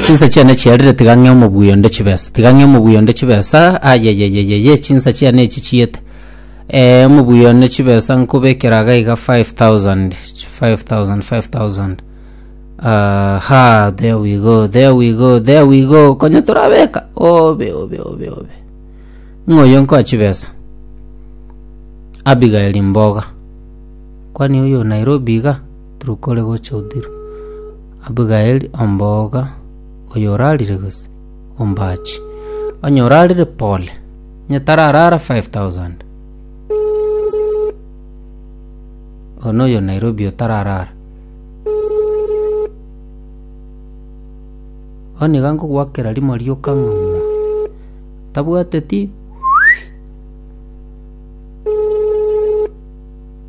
Chinsa chiane chiarire tiga ng'e omobuya onde chibesa tiga ng'e omobuya onde chibesa ayeyeyeyeye chinsa chiane echi chiete eh, omobuya onde chibesa nkobekera iga iga 5000 5000 5000 Ah, ha there we go there we go there we go konya torabeka obe obe obe obe ng'oyo nkoa chibesa abigaeli mboga kwani oyo nairobi iga Turukore gocha Othiro. Abigaeli omboga oyorarire gose ombachi? Onye orarire pole. Onye tararara 5000. Ono oyo Nairobi otararara. Oni iga nkogwakera rimo rioka ng'o. Tabwateti.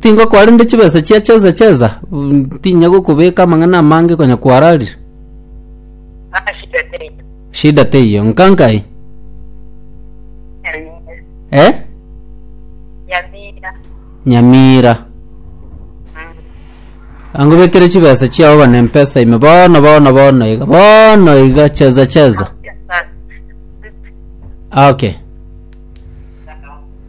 Tingokwa rende chibesa chia cheza cheza, ntinya gokobeka amang'ana amange konya kwararire. Ah, shida teiyo. Shida teiyo, nkankai? Nyamira. Eh? Nyamira. Nyamira. Angobekere chibesa chiao bane mpesa ime bono bono bono iga bono iga cheza cheza. Okay.